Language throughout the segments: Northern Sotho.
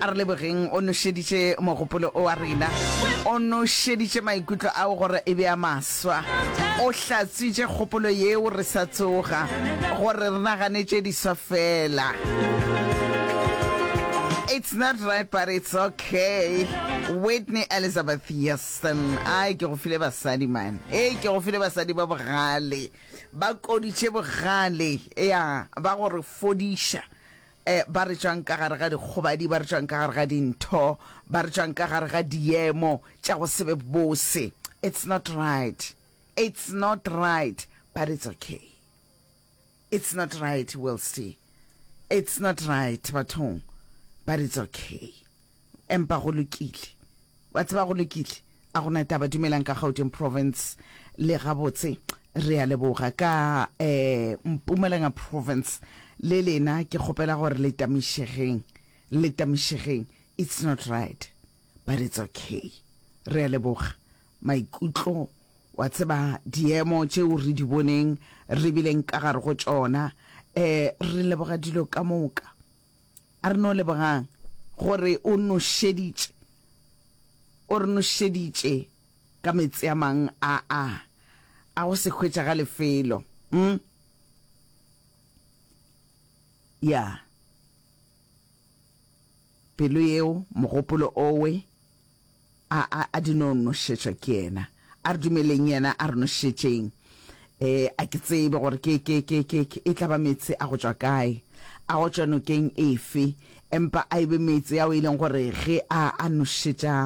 a re lebogeng o nošeditše mogopolo o wa rena o nošeditše maikutlo ao gore e be a maswa o hlatswitše kgopolo yeo re sa tsoga gore re naganetše diswa fela It's not right but it's okay Whitney Elizabeth Houston ai ke go file basadi man e ke go file basadi ba bogale ba koditše bogale ya ba gore fodiša E, ba re tšwang ka gare ga dikgobadi, ba re tšwang ka gare ga dintho, ba re tšwang ka gare ga diemo tša go sebe bose. It's not right. It's not right. But it's okay. It's not right, Wilsty. It's not right, bathong. But it's okay. Empa go lokile. Wa tseba, go lokile. A go na taba. Dumelang ka Gauteng Province. Le gabotse. Re a leboga. Ka, eh, Mpumalanga Province. Le lena, ke kgopela gore le tamišegeng. Le tamišegeng. It's not right. But it's okay. Re a leboga. Maikutlo, wa tseba, diemo tšeo re di boneng, re bileng ka gare go tšona, eh, re leboga dilo ka moka. A re no lebogang gore o nošeditše, o re nošeditše ka meetse a mang a a, a go se hwetšagale felo. Umm. Ya. Pelo yeo, mogopolo owe. A, a, a di no nošetšwa ke Yena. A re dumeleng Yena a re nošetšeng. E, a ke tsebe gore ke, ke, ke, ke, ke, e tla ba meetse a go tšwa kae, a go tšwa nokeng efe, empa a e be meetse ao e leng gore ge a, a nošetša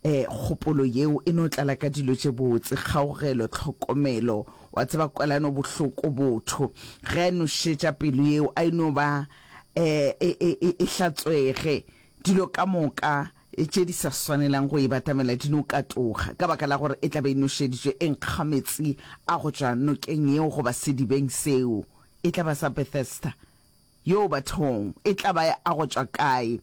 e, kgopolo yeo e no tlala ka dilo tše botse, kgaogelo, tlhokomelo, wa tseba, kwelano bohloko, botho. Ge a e nošetša pelo yeo, a e no ba e, e, e, e, e hlatswege, dilo ka moka tše di sa swanelang go e batamela di no katoga, ka baka la gore e tla be e nošeditšwe e nkga meetse a go tšwa nokeng yeo goba sedibeng seo. E tla ba sa Bethesda. Yoo, bathong! E tla ba a go tšwa kae?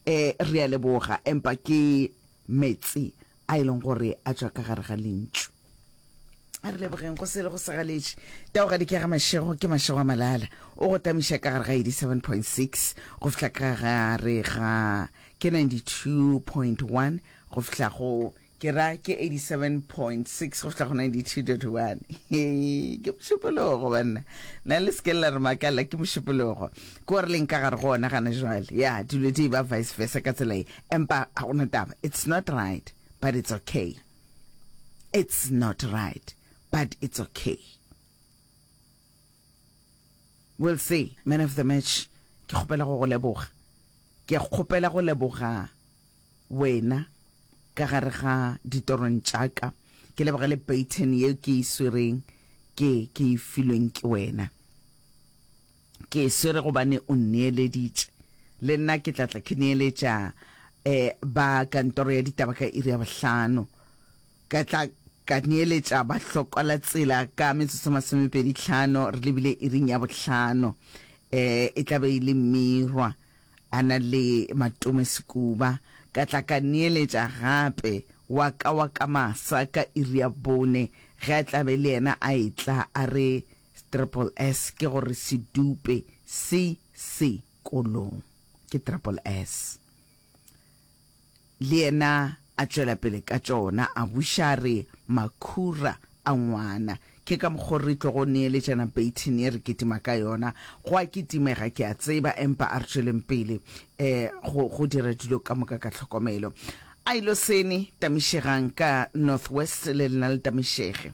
E, re a leboga, empa ke meetse a e leng gore a tšwa ka gare ga Lentšu. a re lebogeng go sele go segaletše tao ga dikega mašego ke mašego a malala o go tamiša ka gare ga 87.6 go fihla ka gare ga ke 92.1 go fihla go ke ra ke 87.6 go fihla go 92.1 ke mošupologo banna na le seke la re makala ke mošupologo ke gore leng ka gare go ona gana jale ya dilo di ba vice versa ka tsela e empa ga gona taba it's not right but it's okay It's not right but it's okay. We'll see. Man of the match, ke kgopela go go leboga. Ke kgopela go leboga wena ka gare ga ditorong tša ka. Ke leboga le baton yeo ke e swereng ke ke e filweng ke wena. Ke e swere gobane o nneeleditše. Le nna ke tla tla ke neeletša ba kantoro ya ditaba ka iri ya bohlano. Ka tla ka neeletša bahlokwa la tsela ka metsotso masomepedi tlhano re lebile iring ya bohlano. E tla be e le Mmirwa a na le Matome Sekuba. Ka tla ka neeletša gape wa ka wa ka masa ka iri ya bone ge a tla be le yena a etla a re Triple S ke gore se dupe se se kolong. Ke Triple S. Le yena a tšwela pele ka tšona, a buša a re, Makhura a ngwana, ke ka mokgo re tlogo neeletšana baton ye re kitima ka yona. Go a kitimega, ke a tseba, empa a re tšweleng pele um go, go dira dilo ka moka ka tlhokomelo. Ailoseni, tamišegang ka North West, le lena le tamišege.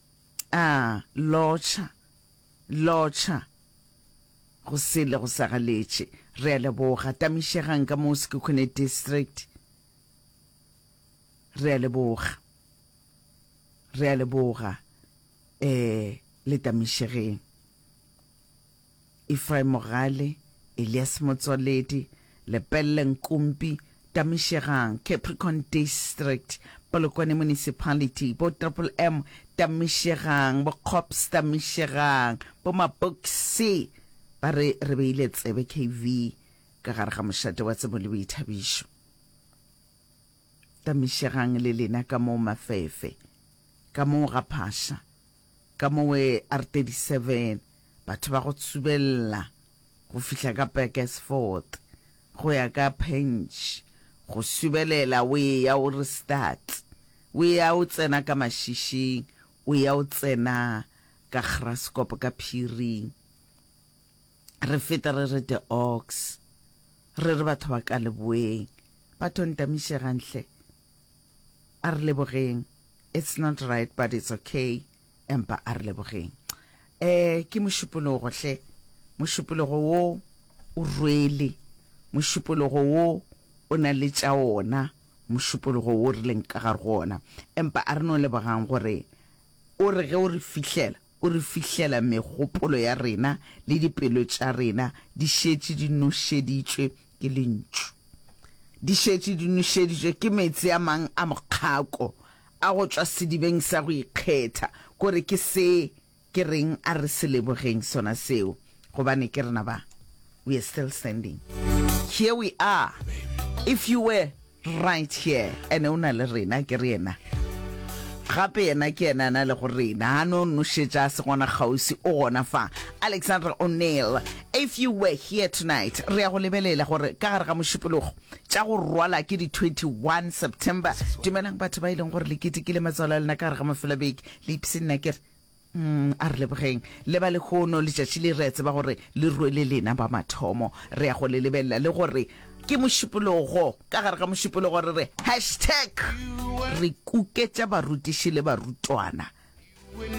A lotšha, lotšha go sele go sa galetše. Re a leboga. Tamišegang ka mo Sekhukhune District. Re a leboga. Re a leboga. Eh, le tamišegeng. Efraim Mogale, Elias Motswaledi, Lepelle Nkumpi, Tamishegang, Capricorn District, Polokwane Municipality, bo Triple M Tamishegang, bo Kgops Tamishegang, bo Mapokisi ba re re beile tsebe KV ka gare ga mošate wa tsebo le boithabišo. Tamishegang le lena ka moo mafefe, ka moo ga phasha. Ka mowe R 37, batho ba go tsubella go fihla ka Burgersfort go ya ka Pench, go subelela o eya o re Stats, o eya o tsena ka Mašišing, o eya o tsena ka Graskop ka phiring, re feta re re De Ox, re re batho ba ka leboeng, ba thontamise ganhle. A re lebogeng. It's not right but it's okay empa a re lebogeng. Eh, ke mošupologo hle. Mošupologo wo o rwele. Mošupologo wo o na le tša ona mošupologo wo re leng ka gare go ona. Empa a re no lebogang gore o re ge o re fihlela, O re fihlela megopolo ya rena le dipelo tša rena di šetše di nošeditšwe ke Lentšu. Di šetše di nošeditšwe ke meetse a mang a mokgako a go tšwa sedibeng sa go ikgetha. Kore ke se ke reng? A re se lebogeng sona seo, gobane ke rena ba. We are still standing. Here we are. If you were. right here ene o na le rena ke re yena gape yena ke yena na le go rena ga no nošetša se gona kgauswi o gona fa alexandra o'neil if you were here tonight re ya go lebelela gore ka gare ga mošupologo tša go rwala ke di 21 september dumelang batho ba e leng gore le ketekile matswalo a lena ka gare ga mafelabeke le ipse nna kere Umm a re lebogeng le ba lehono letšatši le re a tseba gore le rwele lena ba mathomo re ya go le lebelela le gore ke mošupologo ka gare ga mošupologo re re hashtag re kuketša barutiši le barutwana